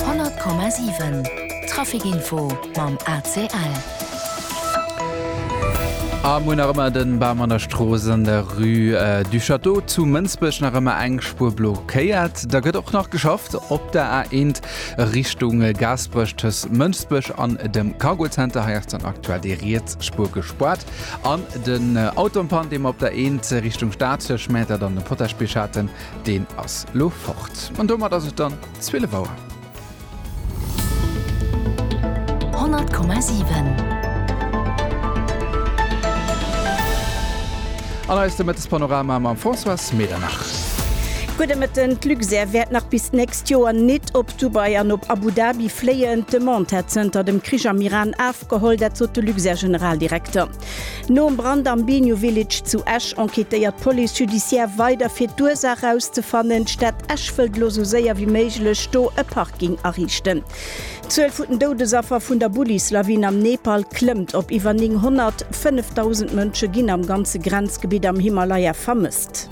100,7 Traficinfo mam ACL. A mol nach ëmmer den Bam an der Strooss an der Rue du Château zu Mënsbech nach ëmmer eng Spuer blockéiert. Da gëtt och nach geschafft op der A1 Richtung Gaasperech tëscht Mënsbech an dem Cargo Center. Hei ass dann aktuell déi riets Spuer gespaart. An den Auto en panne, dee mer op der 1 Richtung Stad tëscht Mäertert an dem Potagebierg haten. deen ass lo fort. An domat ass et dann 12 Auer. 100,7. An eist de Mëttespanorama mam Françoise Medernach. Gudde Mëtten. D'Luxair wäert nach bis d'nächst Joer nit op Dubai an op Abu Dhabi fléien. D'Demande hätt zënter dem Krich am Iran afgeholl. Dat sot de Luxair-Generaldirekter. Nom Brand am Binu Village zu Esch enquêtéiert d'Police judiciaire weider fir d'Ursaach rauszefannen. D'Stad Esch wëllt elo sou séier wéi méiglech do e Parking ariichten. D'Zuel vun den Doudesaffer vun der Bullis-Lawin am Nepal klëmmt op iwwer 900. 5.000 Mënsche ginn am ganze Grenzgebitt am Himalaya vermësst.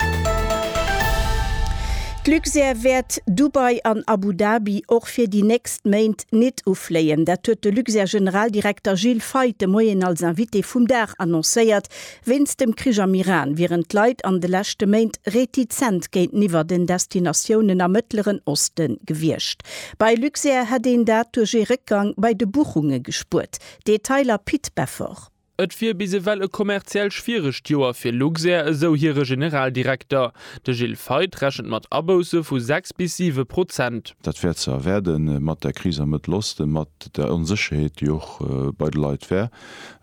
D'Luxair wäert Dubai an Abu Dhabi och fir déi nächst. nächst Méint nit ufléien. Dat huet de Luxair-Generaldirekter Gilles Feith de Moien als Invité vum Dag annoncéiert. Wéinst dem Krich am Iran wieren d'Leit an de leschte Méint retizent géinteniwwer den Destinatiounen am Mëttleren Oste gewiescht. Bei Luxair hätt een dat duerch ee Réckgang bei de Buchunge gespuert. Detailer Pit Beffort. Et wier bis ewell e kommerziell schwieregt Joer fir Luxair, esou hire Generaldirekter. De Gilles Feith rechent mat Abousse vu 6 bis 7 Prozent. Dat wär ze erwaarde mat der Kris am Mëttel Osten, mat der Onsécherheet, déi och bei de Leit wär.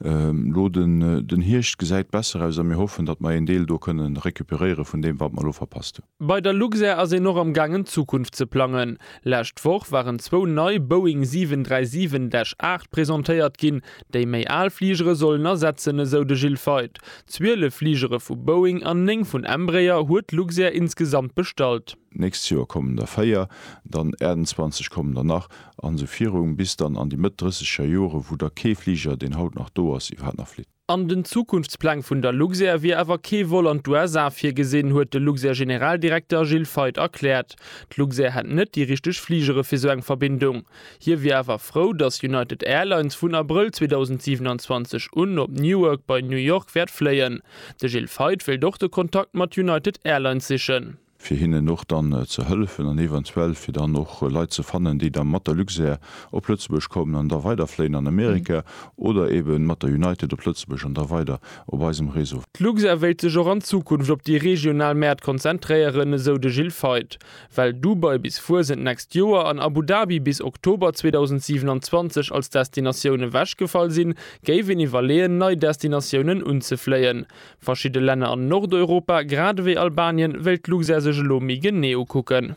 Elo den Hierscht gesäit besser aus a mir hoffen, datt mer een Deel do kënne recuperéiere vun deem, wat mer elo verpasst hunn. Bei der Luxair ass een och am gaangen d'Zukunft ze plangen. Lescht Woch waren zwou nei Boeing 737-8 presentéiert ginn. Déi méi al Fligere sollen ersetzen, esou de Gilles Feith. Zwielef Fligere vu Boeing an néng vun Embraer huet Luxair insgesamt bestallt. D'nächst Joer kommen der véier, dann 28 kommen der nach an esou virum, bis dann an déi Mëtt Drësseger Jore, wou da kee Fliger, deen haut nach do ass, iwwerhaapt nach flitt. An den Zukunftspläng vun der Luxair wier awer kee Vol an d'USA virgesinn, huet de Luxair-Generaldirekter Gilles Feith erkläert. D'Luxair hätt net déi richteg Fligere fir esou eng Verbindung. Hie wier awer frou, datt United Airlines vun Abrëll 2027 un op Newark bei New York wäert fléien. De Gilles Feith wéilt och de Kontakt mat United Airlines sichen. fir hinnen och dann ze hëllefen an eventuell fir dann och Leit ze fannen, déi da mat der Luxair op Lëtzebuerg kommen an da weider fléien an Amerika oder eben mat der United op Lëtzebuerg an da weider op eisem Réseau. D'Luxair wéilt sech och an Zukunft op déi regional Mäert konzentréieren, esou de Gilles Feith. Well Dubai bis Fuesent d'nächst Joer an Abu Dhabi bis Oktober 2027 als Destinatioun ewechgefall sinn, géif een iwwerleeën, nei Destinatiounen unzefléien. Verschidde Länner an Nordeuropa, grad ewéi Albanien, wéilt d'Luxair sech elo méi genee ukucken.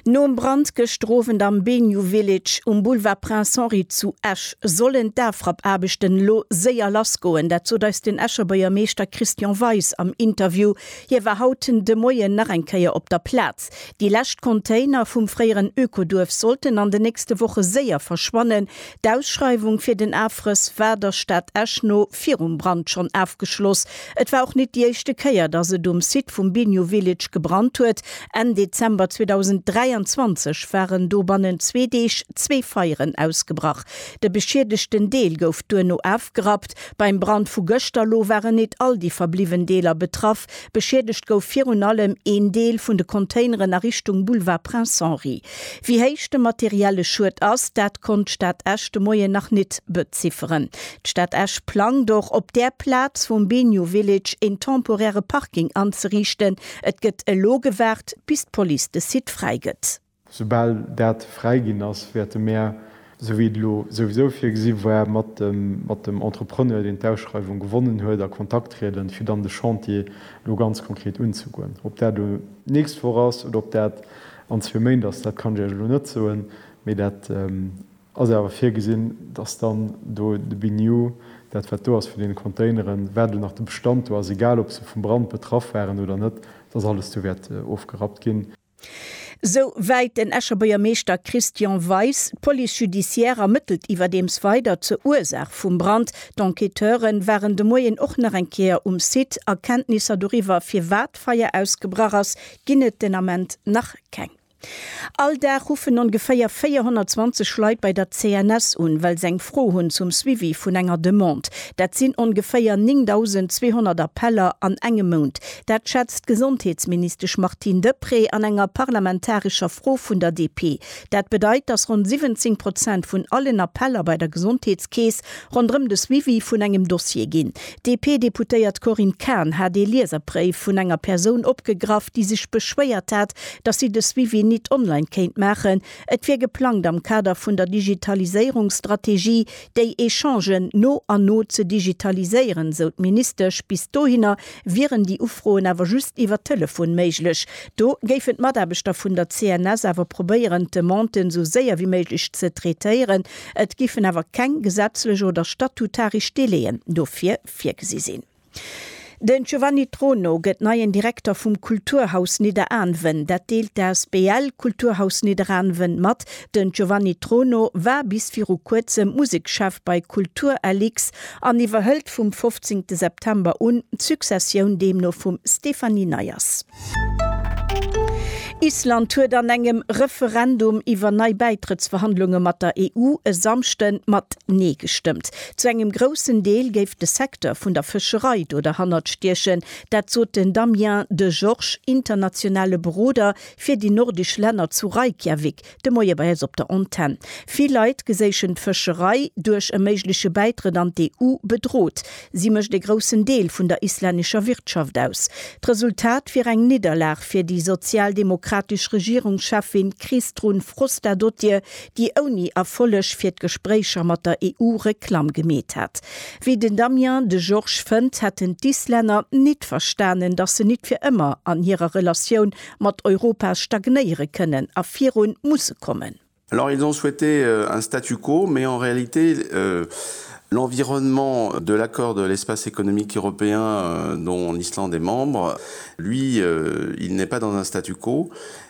Nom Brand gëschter Owend am Benu Village um Boulevard Prince Henri zu Esch sollen d'Afrappaarbechten elo séier lassgoen. Dat sot eis den Escher Buergermeeschter Christian Weis am Interview Hie war haut de Moien nach eng Kéier op der Plaz. Déi lescht Container vum fréieren Ökoduerf sollten an de nächste Woche séier verschwannen. D'Ausschreiwung fir den Afrëss war der Stad Esch no virum Brand schonn afgeschloss. Et war och net déi éischte Kéier, dass et um Site vum Biniou Village gebrannt huet. Enn Dezember 2023 waren do bannent zwee Deeg zwee Feieren ausgebrach. De beschiedegten Deel gouf duerno afgerappt. Beim Brand vu gëschter lo waren nit all déi verbliwwen Deeler betraff. Beschiedegt gouf virun allem een Deel vun de Containeren a Richtung Boulevard Prince Henri. Wéi héich de materielle Schued ass, dat konnt d'Stad Esch de Moien nach nit bezifferen. D'Stad Esch plangt och, op där Plaz vum Biniou Village een temporäre Parking anzeriichten. Et gëtt elo gewaart, bis d'Police de Site fräi gëtt. Soubal dat fräiginn ass, wäerte mär, esou wéi et elo souwisou virgesi war, mat dem Entrepreneur, deen d'Ausschreiwung gewonnen huet, a Kontakt trieden, fir dann de Chantier elo ganz konkret unzegoen. Ob dat elo d'nächst Woch ass oder ob dat an zwee Méint ass, dat kann ech Iech elo net soen, mee dat ass awer virgesinn, dass dann do de Biniou, dat wat do ass vun deene Containeren, wat elo nach de Bestand do ass, egal ob se vum Brand betraff waren oder net, dass alles do wäert ofgerappt ginn. Sou wäit den Escher Buergermeeschter Christian Weis. D'Police judiciaire ermëttelt iwwerdeems weider zur Ursaach vum Brand. D'Enquêteure waren de Moien och nach eng Kéier um Site. Erkenntnisser doriwwer, firwat d'Feier ausgebrach ass, ginn et den Ament nach keng. All Dag ruffen ongeféier 420 Leit bei der CNS un, well se eng Fro hunn zum Suivi vun enger Demande. Dat sinn ongeféier 9.200 Appeller an engem Mount. Dat schätzt d'Gesondheetsministesch Martine Deprez an enger parlamentarescher Fro vun der DP. Dat bedeit, datt ronn 17 Prozent vun allen Appeller bei der Gesondheetskeess ronderëm de Suivi vun engem Dossier ginn. D'DP-Deputéiert Corinne Cahen hat ee Lieserbréif vun enger Persoun opgegraff, déi sech beschwéiert hat, datt si de Suivi nit online kéint maachen. Et wier geplangt am Kader vun der Digitaliséierungsstrategie déi Echangen no an no ze digitaliséieren, sou d'Ministesch. Bis dohinner Wieren déi Ufroen awer just iwwer Telefon méiglech, do géifen d'Mataarbechter vun der CNS awer probéieren, d'Demanden esou séier wéi méiglech ze traitéieren. Et géifen awer keng gesetzlech oder statutaresch Délai'en dofir virgesi sinn. Den Giovanni Trono gëtt neien Direkter vum Kulturhaus Nidderaanwen. Dat deelt d'Asbl Kulturhaus Nidderaanwen mat. Den Giovanni Trono war bis viru kuerzem Musekschef bei Kulturlx an iwwerhëlt vum 15 September un d'Successioun deemno vum Stéphanie Neyers. Island huet an engem Referendum iwwer nei Bäitrëttsverhandlunge mat der EU e Samschde mat Nee gestëmmt. Zu engem groussen Deel géif de Secteur vun der Fëscherei do derhannert stiechen. Dat sot den Damien Degeorges, internationale Beroder Fir déi nordisch Länner zu Reykjavik de Moie bei eis op der Antenn. Vill Leit geséichen d'Fëscherei duerch e méigleche Bäitrëtt an d'EU bedrot. Si mécht ee groussen Deel vun der islännescher Wirtschaft aus. D'Resultat wier eng Nidderlag fir déi sozialdemokratesch Regierungscheffin Kristrún Frostadóttir, déi ouni Erfolleg fir d'Gespréicher mat der EU Reklamm gemeet hat. Wéi den Damien de Georges fënnt, hätten d'Islänner nit verstanen, datt se nit fir ëmmer an hirer Relatioun mat Europa stagnéiere kënnen a virun musse kommen. Alors ils ont souhaité un statu quo, mais en réalité l'environnement de l'accord de l'Espace économique européen dont l'Islande est membre, lui, il n'est pas dans un statu quo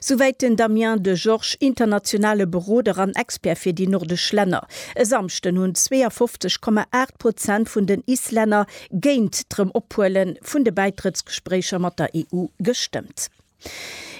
Souwäit den Damien Degeorges, internationale Beroder an Expert fir déi nordesch Länner. E Samschden hunn 52,8 Prozent vun den Islänner géint d'Erëmophuele vun de Bäitrëttsgespréicher mat der EU gestëmmt.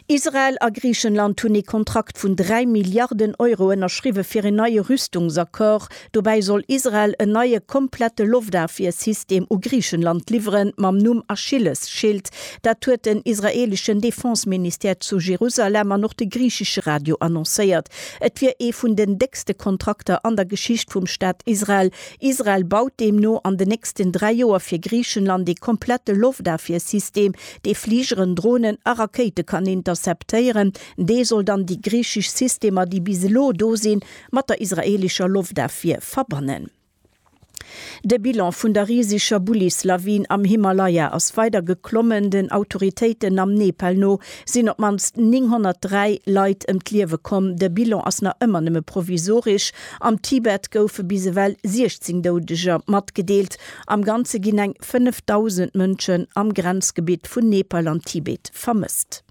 Israel a Griichenland hunn ee Kontrakt vun 3 Milliarden Euro ënnerschriwwe fir een neie Rüstungsaccord Dobäi soll Israel en neie komplette Loftafwiersystem u Griichenland liwweren, mam Numm Achillesschild. Dat huet den israeeleschen Defenseministère zu Jerusalem an och de griichesche Radio annoncéiert. Et wier ee vun den déckste Kontrakter an der Geschicht vum Staat Israel. Israel baut deemno an den nächsten dräi Joer fir Griichenland ee komplette Loftafwiersystem, dee Fligeren, Dronen a Rakéite kann interceptéieren. Dee soll dann déi griichesch Systemer, déi bis elo do sinn, mat der israelischer Loftafwier verbannen. De Bilan vun der riseger Bullis-Lawin am Himalaya ass weider geklommen. Den Autoritéiten am Nepal no sinn op d'mannst 903 Leit ëm d'Liewe komm. De Bilan ass nach ëmmer nëmme provisoresch. Am Tibet goufe bis ewell 16 Doudeger matgedeelt. Am Ganze ginn eng 5.000 Mënschen am Grenzgebitt vun Nepal an Tibet vermësst.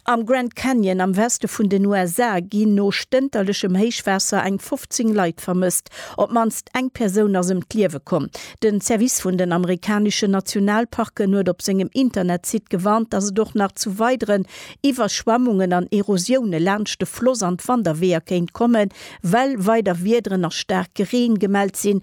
Am Grand Canyon am Weste vun den USA ginn no stënterlechem Héichwaasser eng 15 Leit vermësst. Op d'mannst eng Persoun ass ëm d'Liewe komm. Den Service vun den amerikaneschen Nationalparken huet op sengem Internetsite gewarnt, dass et och nach zu weideren Iwwerschwammungen an Erosioune laanscht de Floss an d'Wanderweeër kéint kommen, well weider Wiederen a staarke Reen gemellt sinn,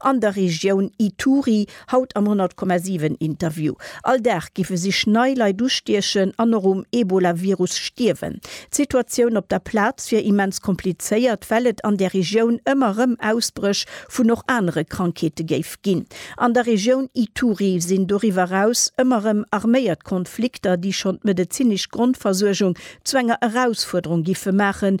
An der Regioun Ituri, haut am 100,7 Interview. All Dag géife sich nei Leit ustiechen an och um Ebola-Virus stierwen. D'Situatioun op der Plaz wier immens komplizéiert, well et an där Regioun ëmmer rëm Ausbréch vun och anere Krankheete géif ginn. An der Regioun Ituri sinn doriwwer eraus ëmmer rëm arméiert Konflikter, déi schonn d'medezinesch Grondversuergung zu enger Erausfuerderung giffe maachen,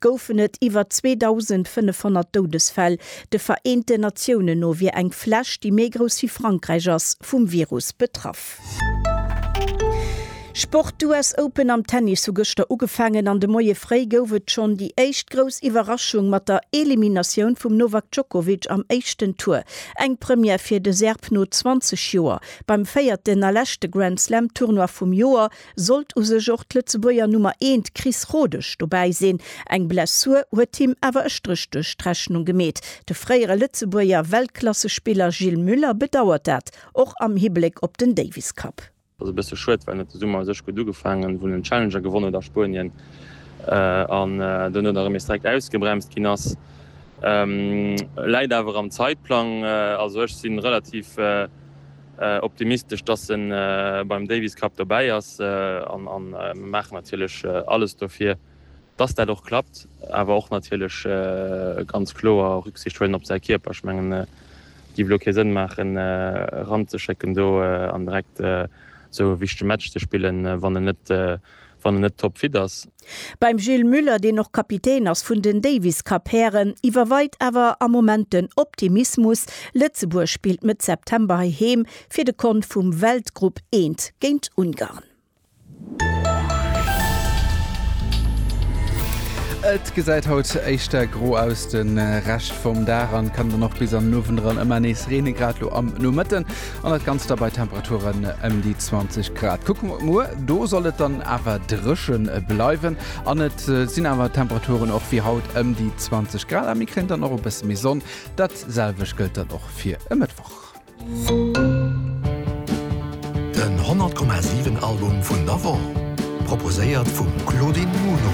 goufen et iwwer 2.500 Doudesfäll. De Vereenten Natiounen no wier eng Fläch, déi méi grouss wéi Frankräich ass, vum Virus betraff. Sport, D'US Open am Tennis hu gëschter ugefaangen an de Moie fréi gouf et schonn déi éischt grouss Iwwerraschung mat der Eliminatioun vum Novak Djokovic am éischten Tour. Eng Première fir de Serb no 20 Joer. Beim véierten a leschte Grand-Slam-Tournoi vum Joer Sollt u sech och d'Lëtzebuerger Nummer eent Chris Rodesch dobäi sinn, eng Blessur huet him awer e Stréch duerch d'Rechnung gemeet. De fréiere Lëtzebuerger Weltklassespiller Gilles Muller bedauert dat, och am Hibléck op den Davis Cup. Ass e bësse schued, well huet de Summer u sech gutt ugefaangen, wou en den Challenger gewonnen huet a Spuenien an duerno da rëm nees direkt ausgebremst ginn ass. Läit awer am Zäitplang, also ech si relativ. optimistesch, dass en beim Davis Cup dobäi ass an mer maachen natierlech alles dofir, dass dat och klappt, awer och natierlech ganz kloer Rücksicht huelen op säi Kierper. Ech mengen et géif elo kee Sënn maachen eranzeschécken do an direkt esou e wichtege Match ze spillen, wann en net wann en net toppfit ass. Beim Gilles Muller, deen och Kapitän ass vun den Davis Cup Hären, iwwerweit awer am Moment den Optimismus. Lëtzebuerg spillt Mëtt September heiheem fir de Kont vum Weltgrupp I géint Ungarn. Et gesäit haut éischter gro aus de Rescht vum Dag an kann dann och bis an den Owend eran ëmmer nees reenen, grad elo am Nomëtten. An dat Ganzt da bei Temperaturen ëm déi 20 Grad. Kucke mer op muer, do soll et dann awer dréche bleiwen an et sinn awer d'Temperaturen och wéi haut ëm déi 20 Grad, a mir kréien dann och e bësse méi Sonn. Dat selwecht gëllt dann och fir e Mëttwoch. Den 100,7 Album vun der Woch. Proposéiert vum Claudine Muno.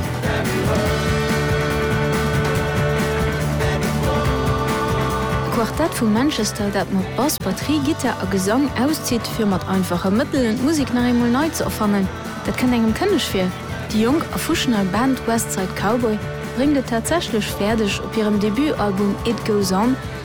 D'Quartett vu Manchester, dat mat Bass, Batterie, Gittar a Gesang auszitt, fir mat einfache Mëttelen d'Musek nach eemol nei ze erfannen, dat kënnt engem kënneg vir. Déi jonk a fuschnei Band West Side Cowboy bréngt et tatsächlech fäerdeg, op hirem Debutalbum It Goes On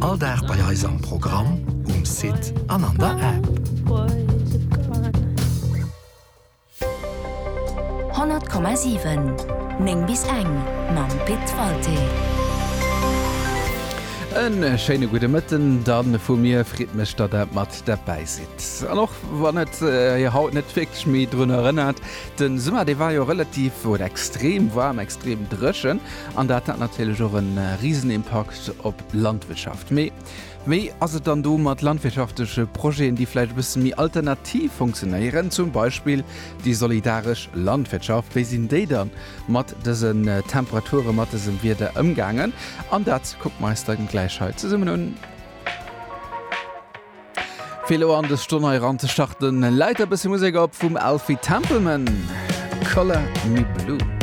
All Dag bei eis am Programm, um Site an an der App. 100,7 9 bis eng mam Pit Walté. En schéine gudde Mëtten dann vu mir. Freet mech, datt Der mat derbäi sidd. An och wann et Hir haut net wierklech méi drun erënnert, de Summer, dee war jo relativ oder extrem waarm, extrem dréchen an dat hat natierlech och e Risenimpakt Fokus op Landwirtschaft. Mee wéi ass et dann do mat landwirtschaftleche Projeten, déi vläicht e bësse méi alternativ funktionéieren, zum Beispill déi solidaresch Landwirtschaft? Wéi sinn déi da mat dësen Temperaturen, mat dësem Wieder ëmgaangen? An dat kucke mer eis da gläich hei zesummen un. Fir elo an dës Stonn hei eran ze starten, läit e bësse Musek op vum Alfie Templeman, Colour Me Blue.